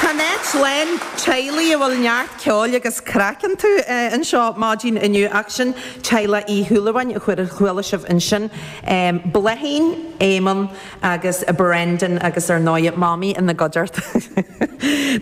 Tá an áit lán teaghlaigh a bhfuil neart ceoil agus craic iontu, anseo maidin inniu ach sin teaghlach Uí Shúilleabháin a chuala sibh ansin, Bláithín, Éamonn agus Brendan agus ar ndóighe Mamaí ina gcuideachta.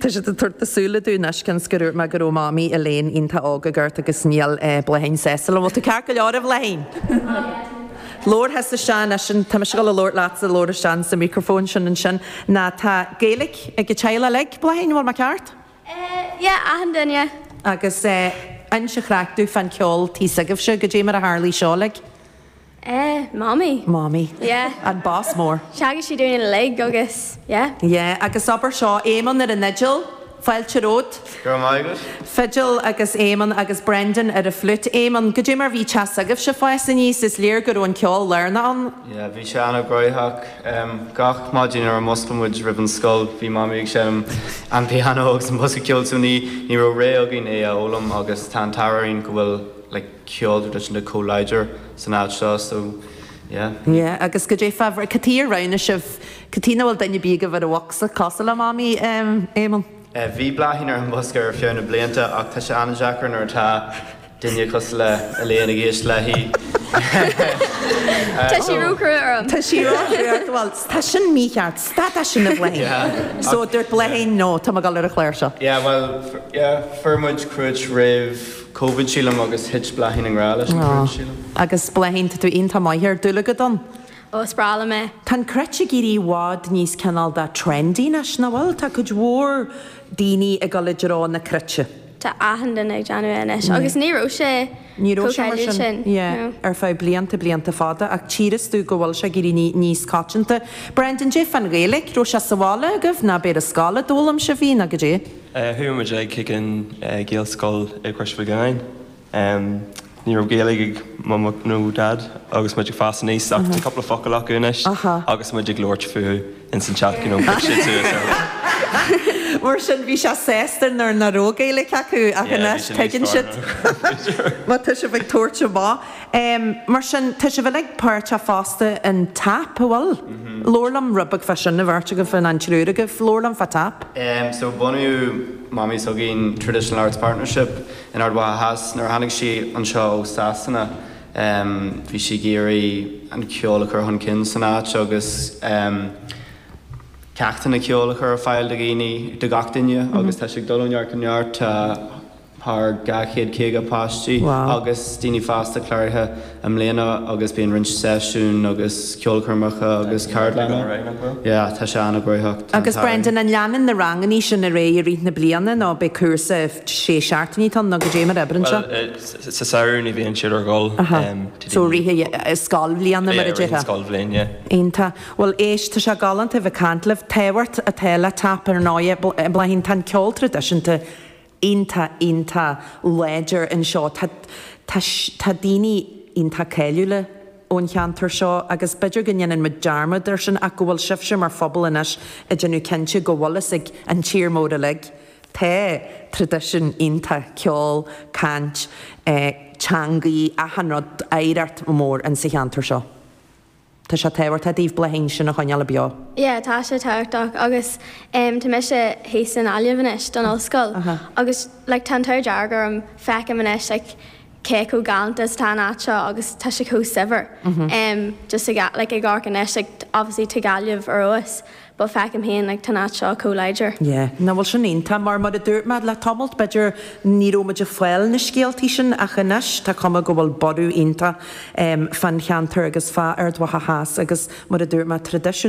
Tá siad ag tabhairt na súile dúinn anois cionn is gur úirt mé go raibh Mamaí Elaine iontach óg ag amharc agus níl Bláithín sásta. An bhfuil tú ceart go leor a Bhláithín? Labhair thusa isteach ansin, tá mise ag labhairt leatsa, labhair isteach ins an microphone sin ansin, now, tá Gaeilic ag an teaghlach uilig, Bláithín, an bhfuil mé ceart? Eh, yeah, achan duine. Agus eh, inis an chraic domh fán ceol tigh s'agaibhse, cad é mar a tharlaigh seo, like? Eh, Mamaí. Mamaí. Yeah. An boss mór. Theagasc sí dúinn uilig agus, yeah. Yeah, agus abair seo, Éamonn ar an fhidil. Fáilte romhat. Go raibh maith agat. Fidil agus Éamonn agus Brendan ar an flute. Éamonn, cad é mar a bhí teach s'agaibhse ag fás aníos, is léir go raibh an ceol lárnach ann. Yeah, bhí sé an-ghnoitheach. Gach maidin nuair a mhuscail muid roimh an scoil bhí Mamaí ag seinm an piano agus an bosca ceoil so ní ní raibh rogha againn é a fhoghlaim agus tá an t-ádh orainn go bhfuil like ceol traidisiúnta chomh láidir san áit seo so Yeah. Yeah, agus cad é fabhrach. Cad chuige ar roghnaigh sibh? Cad chuige nach bhfuil duine ar bith agaibh ar an bhocsa? Cosúil le Mamaí, em, Éamonn? Eh, bhí Bláithín ar an mbosca ar feadh na blianta ach tá sé an-deacair nuair atá duine cosúil le Elaine ag éisteacht léi. Tá sí róchruaidh orm. Tá sí róchruaidh ort, bhuel, tá sin mícheart, stad de sin a Bláithín! So, dúirt Bláithín, no, tá mé ag dul ar an chláirseach. Yeah, bhuel, yeah, fuair muid cruit roimh. Covid sílim agus thit Bláithín i ngrá leis an chruit sílim. Ó agus Bláithín tá tú iontach maith air, dúil agat ann. Ó is breá liom é. Tá an Cruit ag éirí i bhfad níos cineál de trendy anois, nach bhfuil? Tá cuid mhór daoine ag dul i dtreo na Cruite. Tá achan duine ag déanamh é anois agus ní raibh sé chomh cáiliúil sin, no. ar feadh blianta blianta fada ach tífidh tú go bhfuil sé ag éirí níos coitianta. Brendan, cad é fán Ghaeilge? Raibh sé sa bhaile agaibh ná ab é ar scoil a d'fhoghlaim sibh í, ná cad é? Chuaigh muid ag chuig an Ghaelscoil i gCrois Mhic Lionnáin. Ní raibh Gaeilg ag Mamaí nó Daid agus muid ag fás aníos ach tá cúpla focail acu anois agus muid ag labhairt fúthu ins an teach, you know, thug siad suas orthu. Mar sin bhí sibh sásta nuair nach raibh Gaeilg acu ach anois tuigeann siad má tá sibh ag tabhairt amach. Em, mar sin, tá sibh uilig páirteach fosta in TAP, an bhfuil? Labhair liom rud beag fá sin, an bheirt agaibh, an triúr agaibh. Labhair liom fá TAP. Em, so bunaíodh Mamaí s'againn Traditional Arts Partnership in Ard Mhacha Theas nuair a tháinig sí anseo ó Sasana. Em, bhí sí ag iarraidh an ceol a chur chun cinn san áit agus, em, ceachtanna ceoil a chur ar fáil do dhaoine, do gach duine agus tá sé ag dul ó neart go neart. Tá. thar 250 páistí agus daoine fásta cláraithe i mbliana agus bíonn roinnt seisiún agus ceolchoirmeacha agus ceardlanna. Yeah, tá sé an-ghnóthach, tá an t-ádh Agus Brendan, an leanann na rangannaí sin ar aghaidh i rith na bliana nó beidh cúrsa sé seachtainí ann nó goidé mar a oibríonn seo? Bhuel, sa samhradh ní bhíonn siad ar siúl. Aha. So rith scoilbhliana mar a déarfá. Yeah, rith an scoilbhliain, yeah. Iontach. Bhuel éist, tá sé galánta a bheith ag caint libh. Tábhacht atá le tap ar ndóigh, a Bláithín, tá an ceol traidisiúnta, iontach iontach láidir anseo. Tá tá tá daoine iontach cáiliúla ón cheantar seo agus b'fhéidir go ndéanann muid dearmad air sin ach go bhfuil sibhse mar phobal anois ag déanamh cinnte go bhfuil fhios ag an tír mhór uilig tá tradition iontach ceol, caint, eh teangaí, achan rud oidhreacht mór insa cheantar seo. Tá sé tábhachtach daoibh Bláithín sin a choinneáil beo. Yeah tá sé tábhachtach agus em tá mise thíos i nGaillimh anois don ollscoil agus like tá an t-ádh dearg orm feicim anois like cé chomh galánta is atá an áit seo agus tá sé chomh saibhir em just ag like ag amharc anois like obviously tá Gaillimh ar fheabhas Bhuel, feicim féin go bhfuil an áit seo chomh láidir. Yeah. Nach bhfuil sin iontach mar, mar a dúirt mé le tamall, b'fhéidir ní raibh muid ag fáil na scéaltaí sin ach anois tá cuma go bhfuil borradh iontach fán cheantar agus fá Ard Mhacha Theas agus mar a dúirt mé, traidisiún.